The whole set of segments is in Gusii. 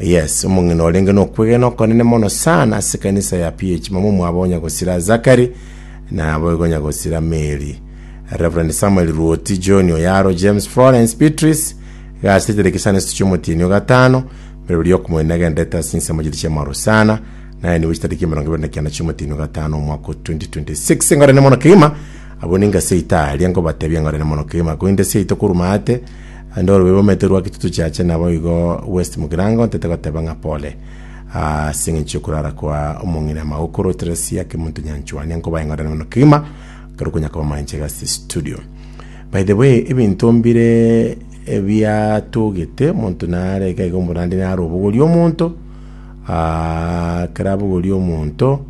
Yes, omong'ina orenge nokwegena okonene mono sana ase kanisa ya PH mama omwabo onya gosira Zakari na abo igonya gosira Mary. Reverend Samuel Ruoti, John Oyaro, James Florence, Beatrice, gasetire kisana ase chiomotienio gatano, meribori yokomoyeni nagenderete ase nsemo chiri chiamaro sana, naye nigo chitariki emerongo ebere na kiana chiomotienio gatano omwaka 2026 ngorene mono kegima abwo ninga seita aria ngobatebia ngorene mono kegima koinde seito koruma ate Naende orobio rw'omete rwa Kitutu Church naboigo West Mugirango ntete goteba ng'a pole ase eng'encho yokorara kwa omong'ina Amagokoro Teresia Kimuntu Nyanchwania nkobaye ng'orere mono kegima ekero konya koba maenchega ase studio by the way ebinto mbire ebiatogete omonto nare iga iga mbuna ndi nare obogoria omonto ah, ekero abogoria omonto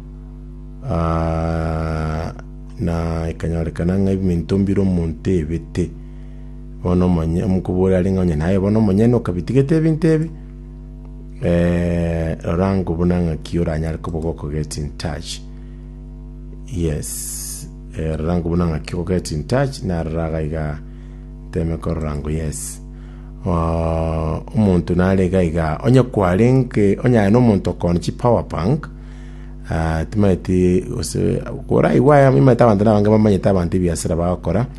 ah, na ikanyorekana ng'a ebinto mbire omonto ebete Bono omony- omokobori arenge onye naye bono omonyene okabitigete ebinto ebi, rora ng'o buna ng'aki oranyare koba ogo get in touch. Yes, eh, rora ng'o buna ng'aki ogo get in touch, narora iga iga nteme korora ng'o yes. Ah, omonto nare iga iga, onye kwarenge, onye aye na omonto okooni chipower bank, ah, timanyeti gose, koraigwe aya, nimanyete abanto nabange bamanyete abanto ebiasara bagokora.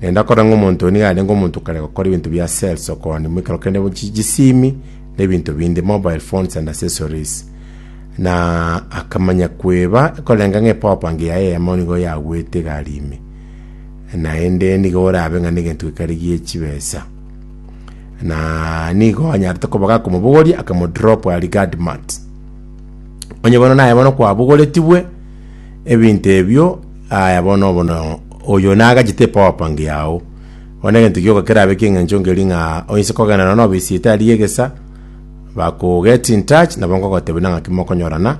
Naende akora ng'a omonto oyo nigo arenge omonto o kare gokora ebinto bia sales okooni moikaro kende bo chi- chisimi na ebinto binde, mobile phones and accessories. Na akamanya kweba ekorenga ng'a epower bank yaye eyemo nigo yagwete egari ime. Naende nigo orabe ng'a negento gekare gie chibesa. Na nigo anyarete koba gakomobogoria akamodrop aria guard mat. Onye bono naye bono kwabogoretigwe Ebinto ebio aya bono obo no, oyo nagachete epoapa ngiya ao. Bono egento gioka kerabe ki'engencho ngeri ng'a oinse kogenda nonya nobisiete aria egesa, bako get in touch nabo ngogotebi na ng'aki mokonyorana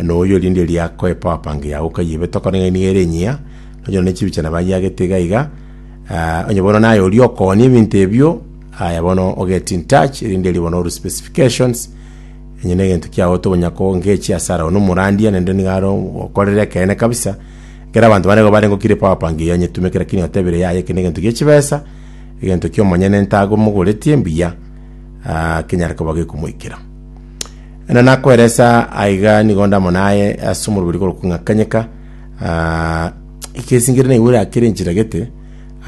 na oyo erinde eria ko epoapa ngiya ao kayebe tokore ng'a niga ere enyia nonya ne chibichani bayiagete iga iga ah, onye bono naye oria okooni ebinto ebio aya bono o get in touch erinde erio bono oru specifications Onye negento kiagote obonyaka ongechie ase arao nomorandia, naende nigo are ogokorera ekeene kabisa. Ekero abanto bare igo barenge okire power bank eye onyetumekere lakini otebire yaya eke negento gie chibesa, egento kia omonyene ntago mogoretie mbuya, ah, kenyare koba gekomoikera. Ekero nakoeresa aiga nigo ndamo naye ase omorweri korokwa Ng'akanyeka, ah, ekesingiri naigure akere enchiragete,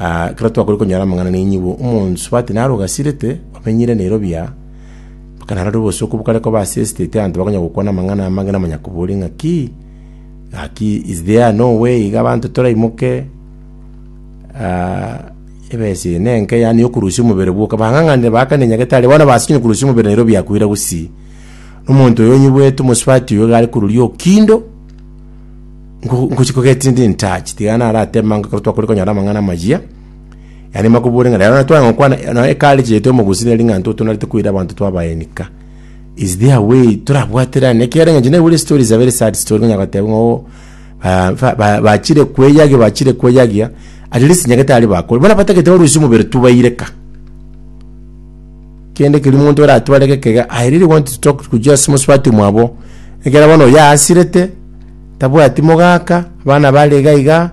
ah, ekero twakorire konyora amang'ana nainyibu omonto ase bati naro ogasirete, omenyire Nairobi aa. Bakanarora obosio okwo bokare koba ase esiteti abanto bakonya gokwana amang'ana amange na monyakobori ng'aki ng'aki is there no way iga abanto toraimoke ebesa eye nenke yaani yokorusia omobere bwoka bang'ang'anire baakane nyagetari bono base konya korusia omobere Nairobi yakwire gusii omonto oyo onyebwete omosubati oyo iga are koruria okindo nko nkochi koget in touch tiga naro ateba nko twakore konyora amang'ana amayia. Yaani makobore ng'a rero natware ngokwana no ekare chete omogusi neri ng'a nto tunarete koira abanto twabaenika. Is there a way turabwaterane ekiagera ng'a chindaigure story is a very sad story ng'a goteba ng'a oh, ah, fa- ba- bachire kweyagia bachire kweyagia at least nyagete ari bakore bona batagete barusie omobere tubaire ka kende keri omonto oratware gekega i really want to talk to just mosubati mwabo ekero bono oyasirete tabwati mogaka abana bare iga iga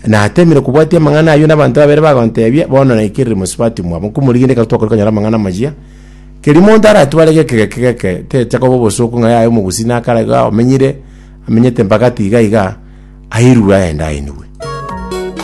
Natemire kobwatia amang'ana ayio n'abanto babere bagontebia, bono naikire rimo sibati mwabo, nkomorigia nekero twakore konyora amang'ana amachia. Keri monto aratware gekege kegeke, techa koba obosooku ng'a yaye omogusii nakare iga omenyire, amenyete mpaka tiga iga airwe aende ainigwe.